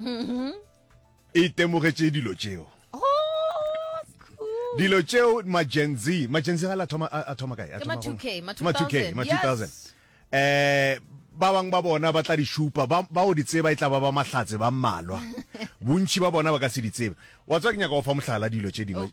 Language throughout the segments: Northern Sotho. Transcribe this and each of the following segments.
mm-hmm. e temogetše dilo tšeo dilo tšeo magenzi magenzi ga la thoma a thoma kae ma 2k ma 2k ma 2000 eh ba bang ba bona ba tla di šupa ba o di tseba e tla ba ba mahlatse ba mmalwa bontši ba bona ba ka se di tsebe wa tswa ke nyaka go fa mohlala dilo tše dingwe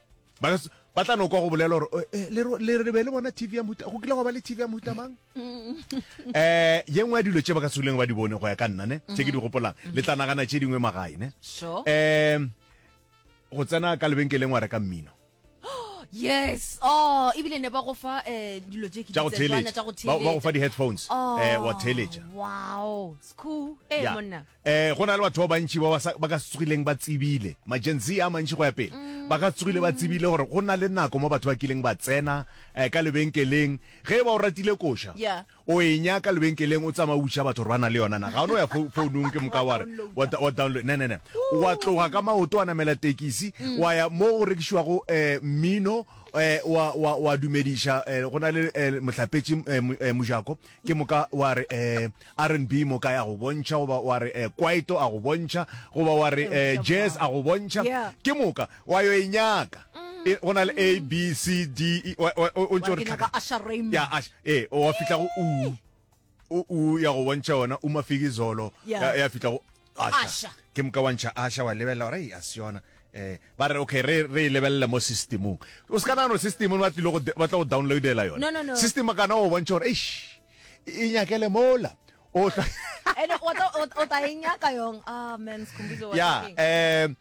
ba ba tla no kwa go bolela gore eh, eh, le le be le bona tv ya mohuta go kile go ba le tv ya mohuta mang um ye nngwe ya dilo tse ba ka seuleng ba di bone go ya ka nna ne tse ke di gopolang mm-hmm. le tla nagana tse dingwe magae ne um go tsena ka lebenkeleng wa reka mmino yes oh ebile ne ba go fa eh dilo tse ke tsa tswana tsa go theletsa ba go fa di headphones oh, eh wa theletsa wow school eh monna Ee, go na le batho ba bantši ba ba ka se tsogileng ba tsebile, ma-Gen Z a mantši go ya pele, ba ka se tsogile ba tsebile gore go na le nako mo batho ba kileng ba tsena ka lebenkeleng. Ge e ba o ratile koša, o e nyaka lebenkeleng, o tsamaya o botšiša batho gore ba na le yona na. Ga o no ya founung ke moka wa re wa download, ne, ne, ne. Wa tloga ka maoto, wa namela tekisi, wa ya mo go rekišiwago mmino, wa dumediša, go na le mohlapetši mojako, ke moka wa re um r n b moka ya go bontšha goba wa re um kwaito a go bontšha goba wa re um jazz a go bontšha ke moka wa yo e nyaka mm. go na le a b c d e, o ntse o re ee wa fitlha go u o ya go bontšha yona umafiki zolo ya fitlha go Asha. ke moka wa ntšha asha wa lebelela gore ei a se yona um ba re okay re re e lebelela mo systemong o se ka nagano systemong ba tlile go de- ba tla go downloadela yone No, no, no. system a kana o bontšha gore eish e nyakele mola o hlwa- ene o tla- o- o tla e nyaka yong ah man sikhumbuzo wa ya ka eng? um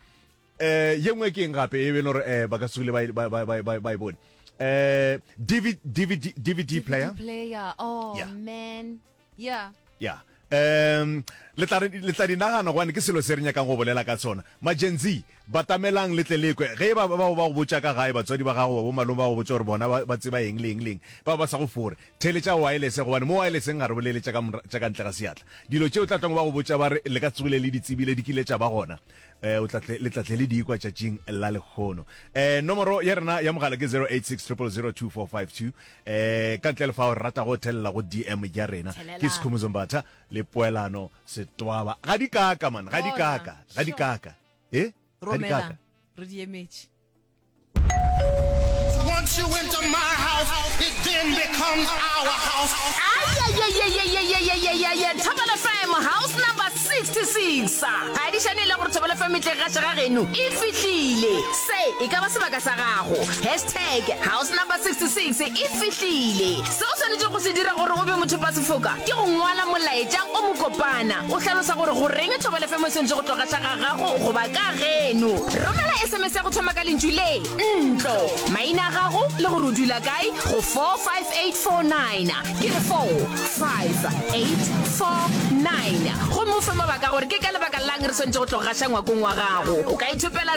Eh, ye nngwe ke eng gape e be le gore eh, ba ka se ba e- ba- ba- ba- ba- ba e bone um dvd dvd dvd player player oh Yeah. man yeah ya um le tla re- le tla di nagana gobane ke selo se re nyakang go bolela ka sona magenzi batamelang le tle le kwe ge e ba ba ba go botša ka gae batswadi ba gago ba bo malome ba go botša gore bona ba- ba tseba eng le eng le eng ba ba sa go fore theletša wireless gobane mo wirelesseng ga re bolele tša ka mora- tša ka ntle ga seatla dilo tšeo tla tlong ba go botša ba re le ka tsogile le di tsebile di kile tša ba gona eh o tlatle le tlatle le dikwa tšatšing la lekgono eh nomoro ya rena ya mogala ke 0860002452 eh ka ntle le fa o rata go thelela go dm ya rena Thelela. ke sekhumo zombatha le poelano setwaba ga di kaka man ga di Bona. kaka ga di Sure. kaka eh ga di kaka romela re di emetše Once you enter my house, it then becomes our house. thobela fm house number 66 adišane e le gore thobela fm e tle ga šega geno e fihlile se e ka ba sebaka sa gago hashtag house number 66 e fihlile Se o swanetšego go se dira gore o be mothopasefoka ke go ngwala molaetša o mokopana o hlalosa gore goreng thobelefemo e swanetše go tloga xa ga gago goba ka geno. Romela sms ya go thoma ka lentšu le, ntlo, maina a gago le gore o dula kae go 45849, ke re 45849, gomme o fe mabaka a gore ke ka lebaka la'ng re swanetše go tloga xa ngwakong wa gago. O ka ithopela.